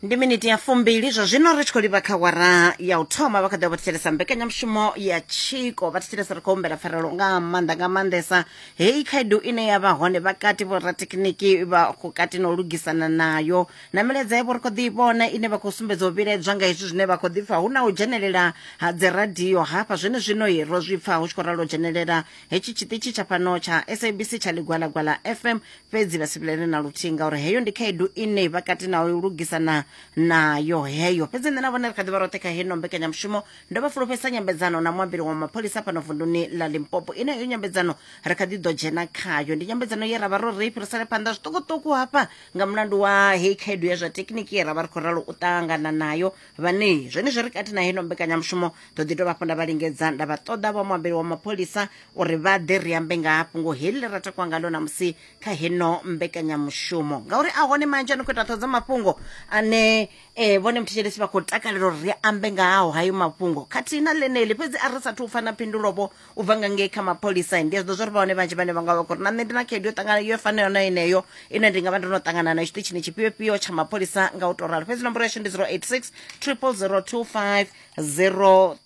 ndi miniti ya fumbili zwa zwino ri tshi khou livha kha wara ya u thoma vha kha ḓa vha thetshelesa mbekanyamushumo ya tshiko vha thetshelesa ri khou humbela pfarelo nga maanḓa nga maanḓesa heyi khaedu ine ya vha hone vhakati vhorathekhiniki vha khou kati na u lugisana nayo na milaedza yavho ri khou ḓi i vhona ine vha khou sumbedza u vhilaedzwa nga hezwi zwine vha khou ḓi pfa hu na u dzhenelela ha dziradio hafha zwene zwino i ro zwi pfa hu tshi khou ralo dzhenelela hetshi tshiṱitshi tsha fhano tsha sabc tsha ḽigwalagwala fm fhedzi vha si vhilele na luthihi ngauri heyo ndi khaedu ine vha kati na u lugisana nayo heyo fhedzi nṋe na vhone ri kha ḓivha roṱhe kha heno mbekanyamushumo ndo vha fulufhesa nyambedzano na muambeli wa mapholisa fhano vunduni ḽa limpopo ine heyo nyambedzano ri kha ḓi ḓo dzhena khayo ndi nyambedzano ye ra vha ro ri fhirisele phanḓa zwiṱukuṱuku hafha nga mulandu wa heyi khaedu ya zwa thekiniki ye ra vha ri khou ralo u ṱangana nayo vhane zwenezwo ri kati na heno mbekanyamushumo ḓo ḓi dovha hafhu nda vha lingedza nda vha ṱoḓa vha muambeli wa mapholisa uri vha ḓe ri ambe nga hafhungo heḽi ḽe ra takwa ngalo namusi kha heno mbekanyamushumo ngauri a hone manzhi a no khou ita ṱhodzo mafhungo ane um vhone muthetshelesi vha khou takalela uri ri ambe nga haho hayo mafhungo khathihi na ḽeneḽi fhedzi a ri sathu u pfa na phindulovho u bva nga ngei kha mapholisa ndi a zwiḓo zwa ri vha hone vhanzhi vhane vha nga vha khou ri na nṋe ndi na khaedu yo ṱangana yo fanayo na yeneyo ine ndi nga vha ndo no ṱangana nayo tshiṱitshini tshifhiofhio tsha mapholisa nga u to ralo fhedzi nomboro yashu ndi 086 triple 025 03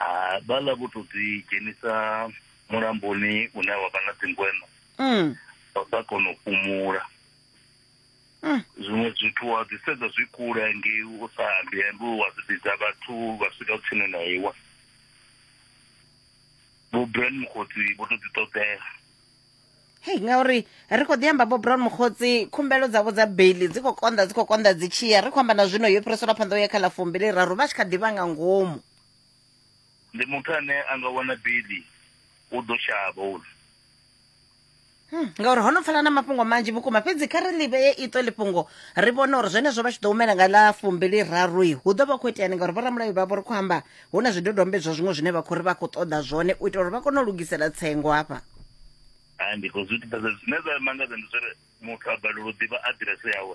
Ah, vhala vho to ḓi dzhenisa mulamboni une wa vha na dzingweno mm. vha sa kona u fhumula mm. zwiṅwe zwithu wa ḓi sedza zwi kule ngei u sa ambi ambi wa ḓi vhidza vhathu vha swika tsini na iwe vho brand mukhodzi vho to ḓi ṱoḓela hei ngauri ri khou ḓi amba bo brown mokgotsi khumbelo dzavho dza baili dzi khou konḓa dzi khou konḓa dzi tshiya ri khou amba na zwino yo fhiriselwa phanḓa u ya kha ḽa fumbili raru vha tshi kha ḓivha nga ngomu Ndi muthu ane a nga wana bili u ḓo shavha uri Hmm, ngauri ho no pfala na mafhungo manzhi vhukuma fhedzi kha ri ḽivhe ye iṱo ḽifhungo ri vhone uri zwenezwo vha tshi ḓo humela nga ḽa fumbili rarui hu ḓo vha khou iteani ngauri vhoramulayo vha vho ri khou amba hu na zwidodombedzwa zwiṅwe zwine vha khou ri vha khou ṱoḓa zwone u itela uri vha kone u lugisela tsengo hafha hai ndi khou zwi ḓivhesa zwine zwa mangadza ndi zwori muthu a balelwa u ḓivha aḓirese yawe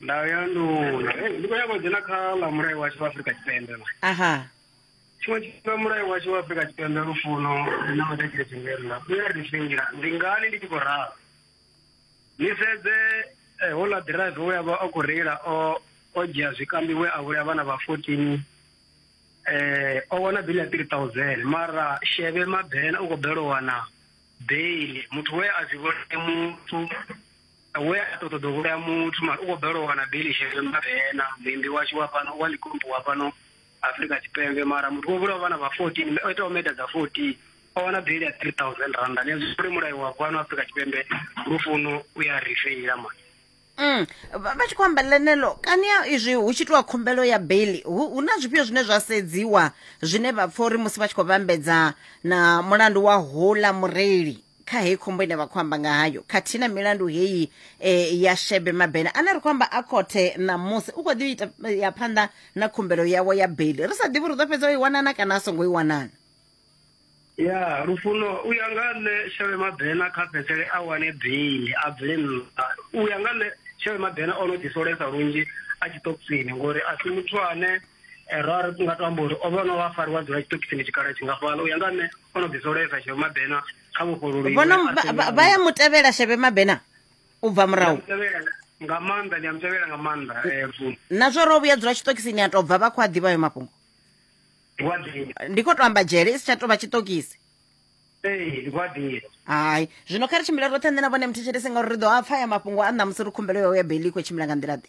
ndayo ya nduna Hey, ndi khou nyanga u dzhena kha ḽa mulayo washu wa afurika tshipembe la aha tshiṅwe tshifhinga mulayo washu wa afurika tshipembe lufuno na matakile tshingela u ya ri fhinga ndi ngani ndi tshi khou ralo ni sedze eh, houḽa ḓiraiva we a vha a khou reila o o dzhia zwikambi we a vhulaya vhana vha fourteen eh o wana bili ya three thousand mara sheve mabena u khou bela u wana beili muthu we a zwi vhone muthu we a to ṱoḓa u vhulaya muthu mara u khou balelwa u wana beli shele mavena muimbi washu wa fhano wa likompo wa fhano afrika tshipembe mara muthu wo vhulawa vhana vha fourteen o itaho meda dza fourteen o wana beli ya three thousand randa ni azwi mulayo wa fhano afrika tshipembe lufuno u ya ri feila mani Mm. vha vha tshi khou amba ḽenelo kani ya izwi hu tshi itiwa khumbelo ya baili hu hu na zwifhio zwine zwa sedziwa zwine vha pfa uri musi vha tshi khou vhambedza na mulandu wa houḽa mureili kha heyi khombo ine vha khou amba nga hayo khathihi na milandu heyi e, ya shebe mabena ane ri khou amba a khothe ṋamusi u khou ḓi ita eh, ya phanḓa na khumbelo yawo ya beli ri sa ḓivhi ri ḓo fhedza o i wanana kana a songo i wanana ya lufuno u ya nga nṋe sheve mabena kha fhedzele a wane beili a bvele nnḓa u ya nga nṋe sheve mabena o no ḓisolesa lunzhi a tshiṱokisini ngori a si muthu ane eh, ra ri nga to amba uri o vha no vha fariwa dzula tshiṱokisini tshikhala tshingafhala u ya nga nṋe o no ḓisoleka sheve mabena kha vhofhololi vhono vha- vha- vha ya mutevhela sheve mabena u bva murahu nga maanḓa ndi a mutevhela nga maanḓa eh, Mfumu. na zwo ro vhuya dzula tshiṱokisini ya tou bva vha khou a ḓivha ayo mafhungo ndi kwa ḓivha ndi khou to amba dzhele i si tsha tou vha tshiṱokisi ee ndi kwa ḓivha hai zwino kha ri tshimbile roṱhe nṋe na vhone muthetshelesi ngauri ri ḓo a pfa ya mafhungo a ṋamusi ri khumbelo yo ya beli i khou tshimbila nga nḓila ḓe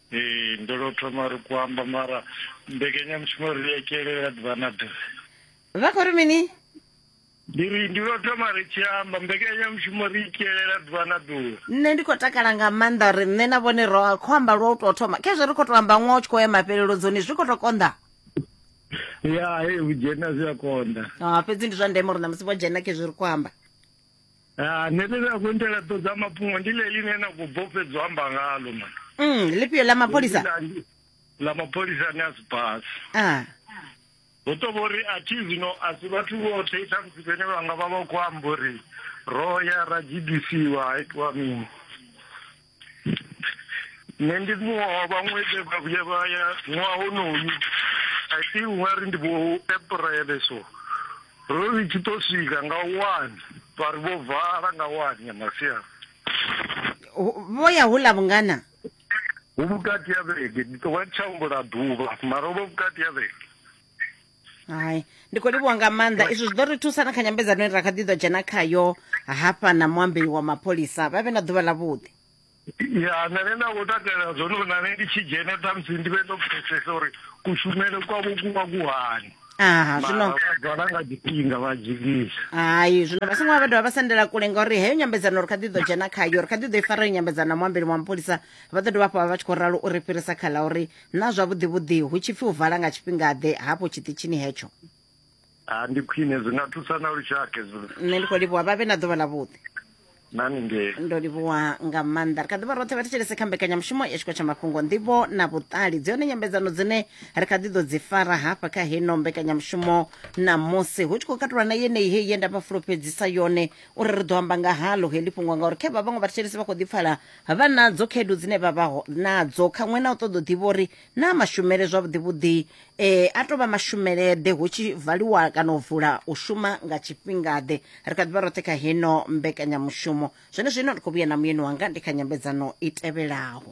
Ee, ndo lo thoma ri ku amba mara mbekanyamushumo ri ya kelela ḓuvha na ḓuvha vha khou ri mini ndi ri ndi lo thoma ri tshi amba mbekanyamushumo ri i kelela ḓuvha na ḓuvha nṋe ndi khou takala nga maanḓa uri nṋe na vhone ro khou amba lwa u tou thoma khezwo ri khou tou amba ṅwa u tshi khou ya mafhelelo dzoni zwi khou tou konḓa ya e u dzhena zwi a konḓa ah, fhedzi ndi zwa ndeme uri na musi vho dzhena khezwo ri khou amba Ah, nṋe ḽine a khou ntela ḓo dza mafhungo ndi ḽe ḽine na khou bofhedzo amba ngalo man mm lifhio ḽa mapholisa ḽa mapholisa ni a si basi ah hu to vhori a thi zwino a si vhathu vhoṱhe i ṱhamusi vhene vha nga vha vha khou amba uri ro ya ra gidisiwa ha itiwa mini nṋe ndi muṅwe wa vhaṅwe vhe vha vhuya vha ya ṅwaha honoyu i think ungari ndi vho aprele so ro ri tshi to swika nga one vha ri vho vala nga one ya masiari vho ya hula vhungana hu vhukati ya vhege ndi tovha ndi tsha humbula ḓuvha mara vho vhukati ya vhege hai ndi khou livhuwa nga maanḓa izwi zwi ḓo ri thusa na kha nyambedzano ine ra kha ḓi ḓo dzhena khayo hafha na muambeli wa mapholisa vha vhe na ḓuvha ḽavhuḓi ya nṋe ne nda khou takalela zwone uri nane ndi tshi dzhena ṱhamusi ndi vhe ndo pfesesa uri kushumele kwavho ku vha ku hani aha zwino vhala nga tshifhinga vha dzikisa hai zwino vha songo vha vha dovha vha sendela kule ngauri heyo nyambedzano ri kha ḓi ḓo dzhena khayo ri kha ḓi ḓo i fara yo nyambedzano na muambeli wa mapholisa vha ḓo dovha hafhu vha vha tshi khou ralo uri fhirisa kha ḽa uri Naa zwavhuḓi-vhuḓi hu tshi pfi u vala nga tshifhinga-ḓe hafho tshiṱitshini hetsho? Ha, ndi khwine, zwi nga thusa na lushaka hezwo. Nṋe ndi khou livhuwa. Vha vhe na ḓuvha ḽavhuḓi. Na ni nge. Ndo livhuwa nga maanḓa. Ri kha ḓi vha roṱhe vha thetshelese kha mbekanyamushumo ya Tshiko tsha Mafhungo, Nḓivho na Vhuṱali. Dzi hone nyambedzano dzine ri kha ḓi ḓo dzi fara hafha kha heno mbekanyamushumo ṋamusi, hu tshi khou katulwa na yeneyi heyi ye nda vha fulufhedzisa yone uri ri ḓo amba nga halo heḽi fhungo, ngauri khe vha vhaṅwe vhathetshelesi vha khou ḓi pfala vha nadzo khaedu dzine vha vha nadzo kha ṅwe na u ṱoḓa u ḓivha uri na mashumele zwavhuḓi vhuḓi um eh, a tou vha mashumeleḓe hu tshi valiwa kana u vula u shuma nga tshifhingaḓe ri kha ḓivha roṱhe kha heno mbekanyamushumo zwene zwino ndi khou vhuya na muyeni wanga ndi kha nyambedzano i tevhelaho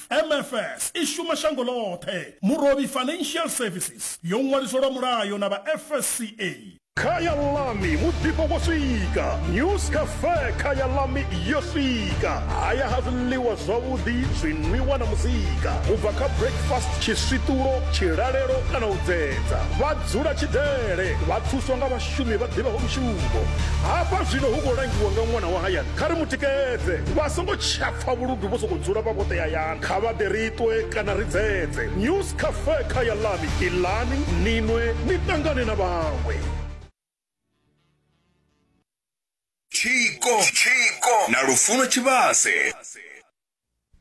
MFS i shuma shango ḽoṱhe. Murovhi Financial Services yo ṅwaliswa lwa mulayo na vha FSCA. Khaya ḽami muḓifho wo swika, News Cafe Khaya ḽami yo swika. Haya ha zwiḽiwa zwavhuḓi, zwinwiwa na muzika. U bva kha breakfast, tshiswiṱulo, tshilalelo kana u dzedza. Vha dzula Tshidele, vha thuswa nga vhashumi vha ḓivhaho mushumo. Hafha zwino hu khou langiwa nga ṅwana wa hayani, kha ri mu tikedze. Vha songo tsha. pfa vhuludu vho sokou dzula vha vhoṱe hayani kha vha ḓe ri ṱwe kana ri dzedze news cafe kha ya ḽani iḽani ni nwe ni ṱangane na vhaṅwe Tshiko, Tshiko na Lufuno Tshivhase.